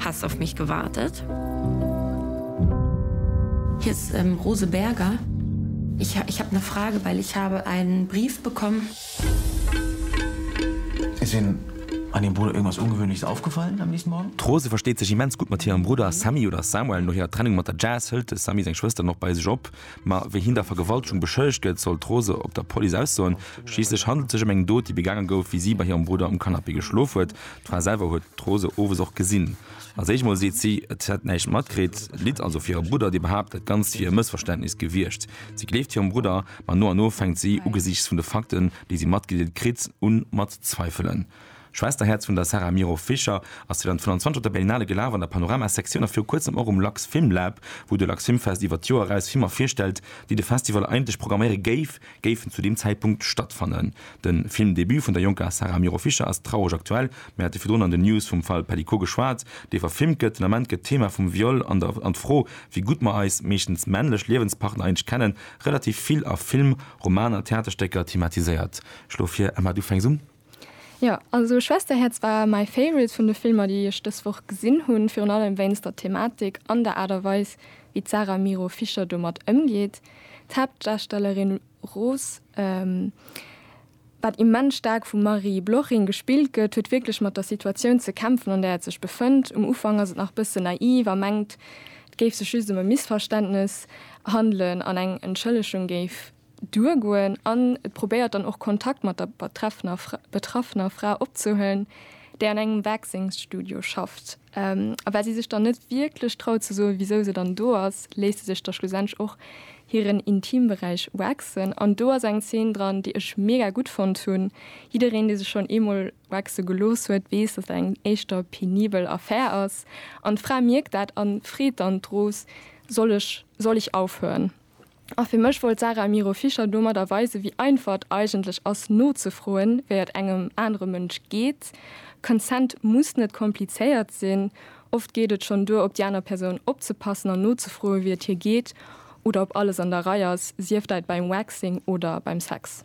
Hast auf mich gewartet? Hier ist Rose Berger. Ich ich hab ne Frage weil ich habe einen Brief bekommen. Ist Ihnen an Ihrem Bruder irgendwas Ungewöhnliches aufgefallen am nächsten Morgen? D'Rose versteet sech immens gutt mat hirem Brudder Sammy, oder Samuel. No hirer Trennung mat der Jazz hëlt de Sammy seng Schwëster nach bei sech op. Ma wéi hien da Vergewaltegung beschëllegt gëtt, soll d'Rose op der Police aussoen. Schliisslech handelt sech ëm eng Dot, déi begaange gouf, wéi si bei hirem Brudder um Canapé geschlof huet. D'Fra selwer huet d'Rose owes och gesinn. Als éischt mol seet si, et hätt näischt matkritt, litt also fir hire Brudder, dee behaapt, dat Ganzt wier e Mëssverständnis gewiescht. Si gleeft hirem Brudder, ma no an no fänkt si, ugesiichts vun de Fakten, déi si matgedeelt kritt, un mat zweifelen. Schwesterherz vun der Sarah Miro Fischer ass 2025 op der Berlinale gelaf, an der Panorama-Sektioun a viru kuerzem och um Lux Film Lab, wou de Lux Film Fest iwwert d'Joer eraus Filmer virstellt, déi de Festival eigentlech programméiere géif, géifen zu deem Zäitpunkt stattfannen. De Filmdebut vun der jonker Sarah Miro Fischer ass traureg aktuell. Mir hate virdrun an den News vum Fall Pellicot geschwat, dee verfilmt gëtt. Den Ament gëtt d'Thema vum Viol an der an d'Fro, wéi gutt mer eis, meeschtens männlech, Liewenspartner eigentlech kennen, relativ vill a Film, Romaner, Theaterstécker thematiséiert. Ech schloe vir, Emma, du fänks un. Jo, also Schwesterherz war my favorite vun de Filmer déi ech dës Woch gesinn hunn, virun allem wéinst der Thematik an der Aart a Weis wéi d'Sarah Miro Fischer domat ëmgeet. D'Haaptdarstellerin Rose, wat immens staark vum Marie Bloching gespillt gëtt, huet wierklech mat der Situatioun ze kämpfen an där et sech befënnt. Um Ufank ass et nach bëssen naiv a mengt et géif sech just ëm e Missverständnes handelen an eng Entschëllegung géif duergoen an et probéiert dann och Kontakt mat der betreffener Fra, betraffener Fra opzehuelen, déi an engem Waxings-Studio schafft. A well si sech dann net wierklech traut ze soen, wisou se dann do ass, léisst se sech da schlussendlech och hiren Intimberäich waxen. An do ass eng Zeen dran, déi ech mega gutt fonnt hunn. Jiddereen, dee sech schonn eemol waxe gelooss huet, weess, dass dat eng éischter penibel Affär ass. An d'Fra mierkt dat an freet dann d'Rose, Soll ech, soll ich aufhören? A fir mech wollt d'Sarah Amiro Fischer domadder weisen, wéi einfach et eigentlech ass nozefroen, wéi et engem anere Mënsch geet. Consent muss net komplizéiert sinn, oft geet et schonn duer, op déi aner Persoun opzepassen an nozefroen, wéi et hir geet oder ob alles an der Rei ass, sief dait beim Waxing oder beim Sex.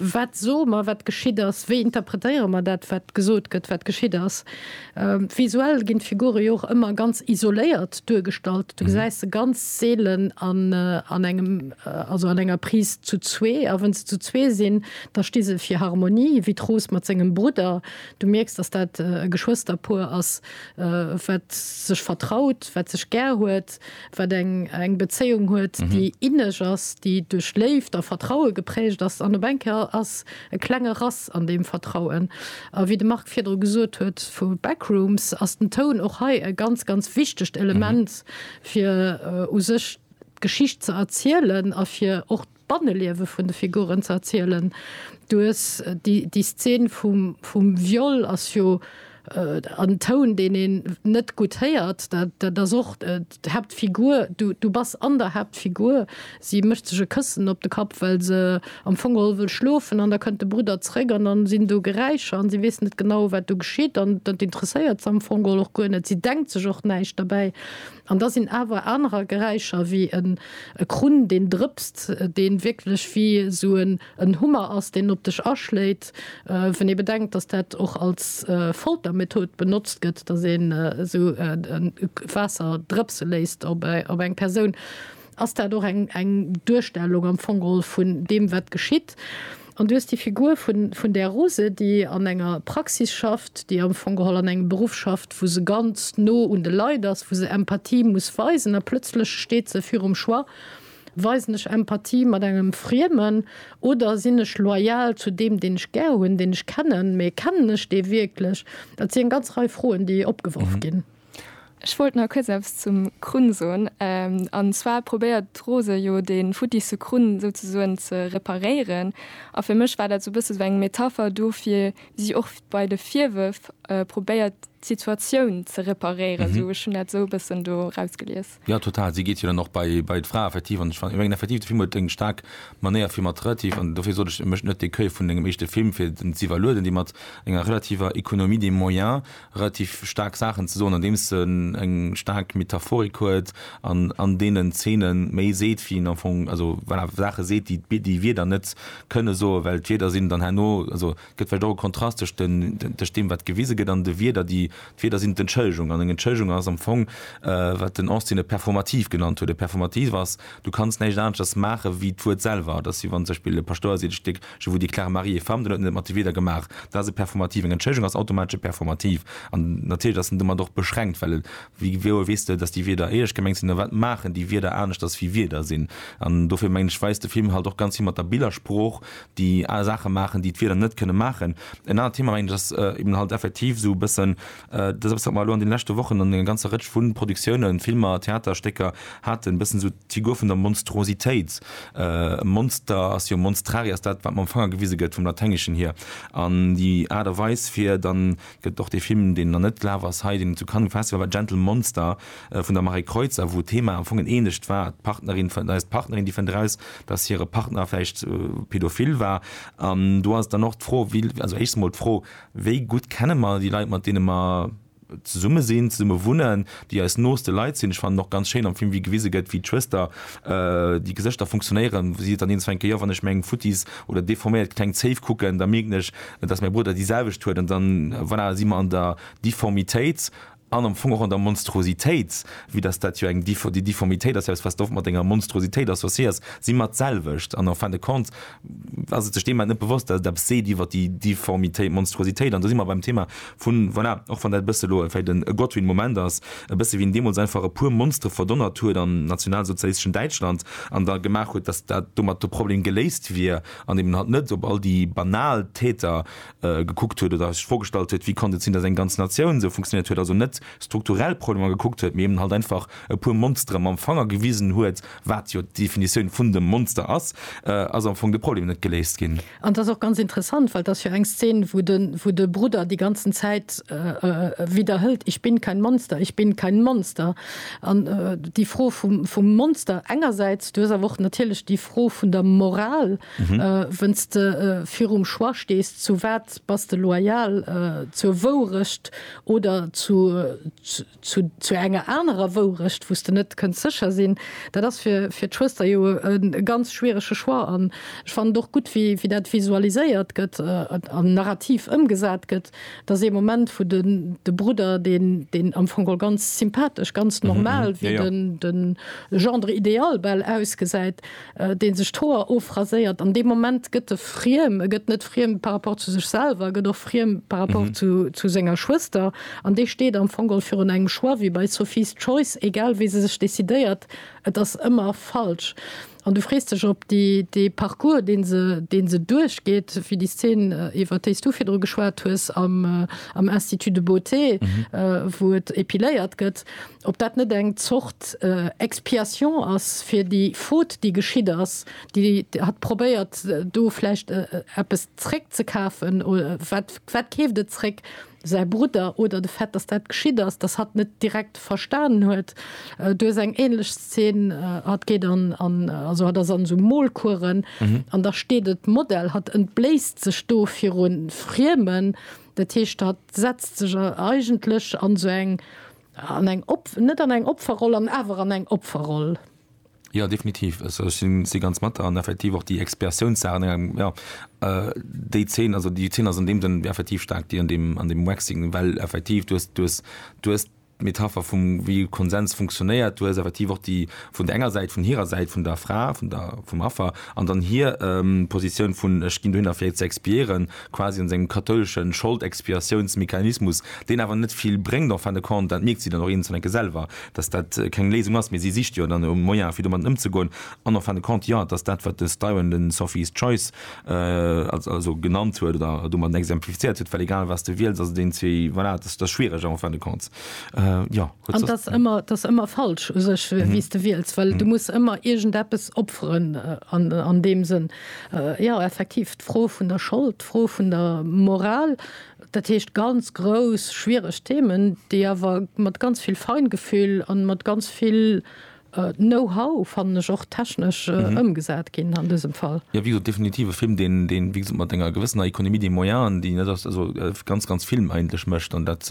Wat soe mer, wat geschitt ass? Wéi interpretéiere mer dat, wat gesot gëtt, wat geschitt ass? Visuell ginn d'Figure jo och ëmmer ganz isoléiert duergestallt. Du gesäis se ganz seelen an engem, also an enger Prise zu zwee. A wa se zu zwee sinn, da sti se fir Harmonie, wéi d'Rose mat sengem Brudder. Du mierks, datt dat e Geschwësterpuer ass, wat sech vertraut, wat sech gär huet. wat eng eng Bezéiung huet, déi inneg ass, déi duerch Léift a Vertraue geprägt ass. An op eng Kéier ass e klenge Rass an deem Vertrauen. A wéi de Marc virdru gesot huet vu Backrooms, ass den Toun och hei e ganz, ganz wichtegt Element, fir u sech d'Geschicht ze erzielen a fir och D'Banneliewe vun de Figuren ze erzielen. Du hues déi Szen vum Viol, ass jo en Toun, deen een net gutt héiert. Dat ass och d'Haaptfigur. Du bass an der Haaptfigur. Si mécht sech e Këssen op de Kapp, well se am Fong geholl wëll schlofen. An da kënnt de Brudder zeréck an dann sinn do Geräischer an si weess net genau, wat do geschitt. An dat interesséiert se am Fong geholl och guer net. Si denkt sech och näischt derbäi. An da sinn awer anerer Geräischer, wéi en Krunn, deen drëpst, deen wierklech wéi esou en Hummer ass, deen op dech aschléit. Wann ee bedenkt, dass dat och als Foltermethod benotzt gëtt, dass een esou Waasser drëpse léisst op eng Persoun, ass dat och eng eng Duerstellung am Fong geholl vun deem wat geschitt. An du hues déi Figur vun vun där Rose, déi an enger Praxis schafft, déi am Fong geholl an engem Beruff schafft, wou se ganz no un de Leit ass, wou se Empathie muss weisen a plëtzlech steet se virum Choix, weisen ech Empathie mat engem Friemen oder sinn ech loyal zu deem, deen ech gär hunn, deen ech kennen, mee kennen ech dee wierklech? Dat si eng ganz Rei Froen, déi opgeworf ginn. Ech wollt nach kuerz eppes zum Krunn soen. An zwar probéiert d'Rose jo dee futtichste Krunn souzesoen ze reparéieren. A fir mech war dat sou bësse sou eng Metapher dofir, wéi si och bei de Virwërf probéiert d'Situatioun ze reparéieren. Esou, ech hunn dat esou e bëssen do erausgelies. Jo, total. Si geet jo dann och bei, bei d'Frae effektiv. An ech fan, ech mengen effektiv, de Film huet eng staark Manéier, fir mat relativ, an dofir sot ech, e mécht net déi Queue vun engem éischte Film, fir en z'iwwerlueden, déi mat enger relativer Economie des moyens relativ staark Saachen ze soen, andeems en eng staark Metaphorik huet an an deenen Zeene méi seet, wéi en am Fong, also voilà, Saache seet, déi, déi d'Wierder net kënne soen, well d'Wierder sinn dann herno, also Gëtt vläicht och e Kontrast tëscht deem, wat gewise gëtt, an de Wierder, déi, d'Wierder sinn d'Entschëllegung. An eng Entschëllegung ass am Fong, wat den Austin e Performativ genannt huet. E Performativ ass, du kanns näischt aneschters maachen, wéi d'Wuert selwer. Et ass, wéi wann zum Beispill e Paschtouer seet, e Stéck Je vous déclare Marie et femme, dann huet en et mat de Wierder gemaach. Dat ass e Performativ. Eng Entschëllegung ass automatesch e Performativ. An natierlech ass en domat och beschränkt, well wéi genau weess de, datt déi Wierder éierlech gemengt sinn, a wat maachen déi Wierder aneschters, wéi Wierder sinn? An dofir mengen ech, weist de Film halt och ganz vill mat der Billersprooch, déi aner Saache maachen, déi d'Wieder net kënne maachen. En anert Thema, mengen ech, ass eben halt effektiv esou e bëssen, dat ass eppes, wat mer elo an deene leschte Wochen an enger ganzer Rëtsch vu Produktiounen, Filmer, Theaterstécker haten, e bëssen esou d'Figur vun der Monstruositéit. E Monster ass jo, monstrari ass dat, wat mam Fanger gewise gëtt, vum Laténgeschen hier. An déi Aart a Weis, fir dann gëtt och dee Film, deen nach net gelaf ass hei, deen et zu Cannes gefestigt huet, war Gentle Monster vun der Marie Kreutzer, wou d'Thema am Fong en ähnlecht war, d'Partnerin fënnt, eis d'Partnerin, déi fënnt eraus, dass hire Partner vläicht pädophil war. An do ass dann och d'Fro, wéi, also éischstens emol d'Fro, wéi gutt kenne mer déi Leit, mat deene mer zesumme sinn, zesumme wunnen, déi eis nooste Leit sinn? Ech fannen och ganz schéin am Film, wéi gewise gëtt, wéi d'Schwëster, déi Gesëschter funktionéieren, wou si et dann eens fänken, jo, wann ech meng futtis oder deforméiert kleng Zéif kucken, da mierken ech, dass mäi Brudder déi selwecht huet, an da voilà, si mer an der Difformitéit an am Fong och an der Monstruositéit, vue dass dat jo eng, déi Difformitéit ass jo eppes, wat s de oft mat enger Monstruositéit associéiers, si mer d'selwecht. An en fin de compte ass et sech deem Moment net bewosst, dass et eppes seet iwwer déi Difformitéit, d'Monstruositéit. An do si mer beim Thema vu voilà, och wann dat e bësse elo vläicht e Godwin Moment ass, e bësse wéi en deemools einfach e puer Monstere verdonnert huet am nationalsozialisteschen Däitschland an da gemaach huet, dass dat domat de Problem geléist wier, an eben halt net op all déi banal Täter gekuckt huet oder sech vorgestallt huet, wéi konnt et sinn, dass eng ganz Natioun esou funktioniert huet, also net strukturell Problemer gekuckt huet, mee eben halt einfach e puer Monstere mam Fanger gewisen huet, wat jo d'Definitioun vun dem Monster ass, ass am Fong de Problem net geléist ginn. An et ass och ganz interessant, well et ass jo eng Szen, wou de Brudder déi ganzen Zäit widderhëlt, Ich bin kein Monster, ich bin kein Monster. An déi Fro vum Monster engersäits, du hues awer och natierlech déi. d'Fro vun der Moral, wënn s de virum Choix stees, zu wat bass de loyal, zur Wourecht oder zu zu enger anerer Wourecht, wou s de net kënns sécher sinn, dat ass fir fir d'Schwëster jo e ganz schwierege Choix. An ech fannen et och gutt, wéi dat visualiséiert gëtt an narrativ ëmgesat gëtt. Dat ass ee Moment, wou den de Brudder, deen deen am Fong geholl ganz sympathesch, ganz normal, wéi den de Gendre idéal bal ausgesäit, dee sech d'Hoer ofraséiert, an dee Moment gëtt e friem. E gëtt net friem par rapport zu sech selwer, e gëtt och friem par rapport zu zu senger Schwëster. An dee steet am Fong geholl virun engem Choix, wéi bei Sophie's Choice, egal wéi se sech decidéiert, et ass ëmmer falsch. An du frees dech, ob déi, dee Parcours, deen se, deen se duerchgeet fir déi Szen, iwwert déi s du virdru geschwat hues am, am Institut de beauté, wou et epiléiert gëtt, ob dat net eng Zort Expiation ass fir déi Faute, déi geschitt ass, déi hat probéiert, do vläicht eppes zréckzekafen, wat, wat keeft et zréck? säi Brudder oder de Fait, dass dat geschitt ass, dass hatt net direkt verstanen huet. Do ass eng ähnlech Szen, hatt geet an, also hatt ass an esou Molcoursen an da steet et Model, hatt entbléisst sech do viru Friemen, dat heescht hatt setzt sech eigentlech an esou eng, an eng, net an eng Opferroll an awer an eng Opferroll. Jo, definitiv. Also ech sinn si ganz mat der an effektiv och déi Expiatiounssaach an engem jo déi Zeen, also déi Zeen ass an deem Sënn effektiv staark déi an deem an deem Waxing, well effektiv du hues du hues du hues d'Metapher vum wéi Konsens funktionéiert, du hues effektiv och déi vun der enger Säit vun hirer Säit vun der Fra vun der vum Affer an dann hir Positioun vun ech ginn dohinner fir et ze expiéieren quasi an sengem kathoulesche Schold-Expiatiounsmechanismus, deen awer net vill bréngt en fin de compte. Dat mierkt si dann och eenzel enke selwer. dass dat keng Léisung ass, mee si sicht jo dann no Moyene fir domatten ëmzegoen an en fin de compte, jo, et ass dat wat de Styron de Sophie's Choice also genannt huet oder domat exemplifizéiert huet, well egal wat s de wiels ass et een zwee, voilà, et ass schwiereg en fin de compte, jo. An et ass ëmmer, et ass ëmmer falsch u sech wéi s de wiels, well du muss ëmmer iergendeppes opferen an deem Sënn. Jo, effektiv, d'Fro vun der Schold, d'Fro vun der Moral, Dat heescht ganz grouss, schwiereg Themen, déi awer mat ganz vill Feingefühl a mat ganz vill Know-how, fannen ech, och technesch ëmgesat ginn an dësem Fall. Jo, wéi gesot, definitiv e Film, deen, wéi gesot, mat enger gewëssener Économie des moyens, déi net ass, also ganz, ganz Film eigentlech mécht. An dat,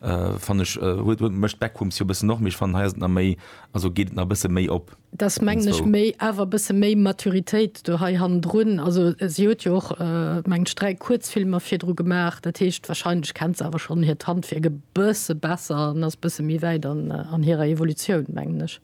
fannen ech, huet, mécht Backrooms jo e bëssen och, mee ech fannen, hei ass et nach méi Also geet et nach e bësse méi op. Dass, mengen ech, méi, awer e bësse méi Maturitéit do hei hannendrun. Also si huet jo och, mengen ech, dräi Kuerzfilmer virdru gemaach. Dat heescht, wahrscheinlech kennt se awer schonn hiert Handwierk e bësse besser an ass e bësse méi wäit an hirer Evolutioun, mengen ech.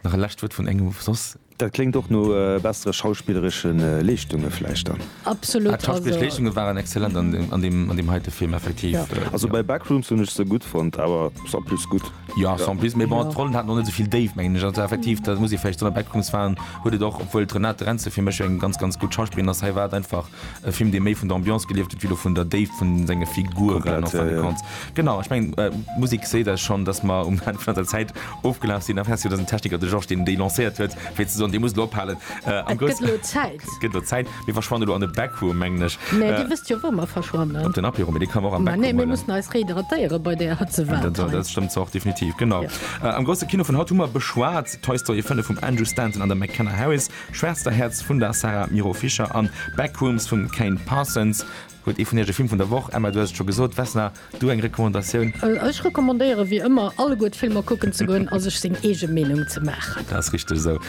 Nach e lescht Wuert vun engem soss? Dat kléngt och no bessere schauspilleresche Leeschtunge vläicht dann. Absolut, also. D'Schauspilleresch Leeschtunge waren exzellent an deem heite Film, effektiv. Also bei Backrooms hunn ech se gutt fonnt, awer Sans Plus gutt. Jo, Sans Plus, mee bon, d'Rollen haten och net esou vill Déift, mengen ech. Also effektiv, dat muss ee vläicht soen, a Backrooms waren, huet et och, obwuel d'Renate Renze fir mech eng ganz, ganz gutt Schauspillerin ass, hei war et einfach E Film, dee méi vun der Ambiance gelieft huet wéi elo vun der Déift vu senge Figuren. Komplett, ja, ja. Genau, ech mengen, d'Musek seet eis schonn, dass mer um Enn vun eiser Zäit ofgelaf sinn. Enfin, si huet eisen Techniker, de Georges, deen déi lancéiert huet, fir ze soen, Dir musst elo ophalen. Am Et grouss. gëtt elo Zäit. Et gëtt elo Zäit. Mir verschwannen elo an e Backroom, mengen ech. Mä Dir wësst jo, wou mer verschwannen. Op den Apéro, mä dee ka mer och am Mä Backroom nee, mir huelen. mussen eis rehydratéiere bei där Hëtze, wat Dat, dat hei. stëmmt zwar och definitiv, genau. Jo. Am grousse Kino vun haut hu mer beschwat Toy Story 5 vum Andrew Stanton an der McKenna Harris. Schwesterherz vun der Sarah Miro Fischer an Backrooms vum Cain Parsons. Huet ee vun iech e Film vun der Woch? Emma, du hues et scho gesot. Vesna, du eng Recommandatioun? Ech recommandéiere wéi ëmmer alleguer d'Filmer kucken ze goen a sech seng eege Meenung ze maachen. Dat ass richteg esou.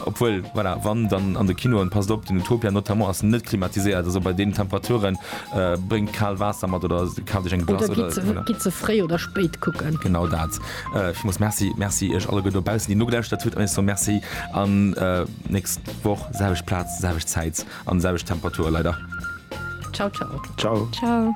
Obwuel, voilà, wann dann an de Kinoen, passt op, den Utopia notamment ass net klimatiséiert. Also bei deenen Temperaturen, bréngt kaalt Waasser mat oder kaaf dech eng Glace oder. Oder gitt se fréi oder spéit kucken. Genau dat. Ech muss Merci Merci iech alleguer dobaussen, déi nogelauschert hutt, an iech soen Merci an nächst Woch selwecht Plaz, selwecht Zäit an selwecht Temperature leider. Ciao ciao. Ciao. Ciao.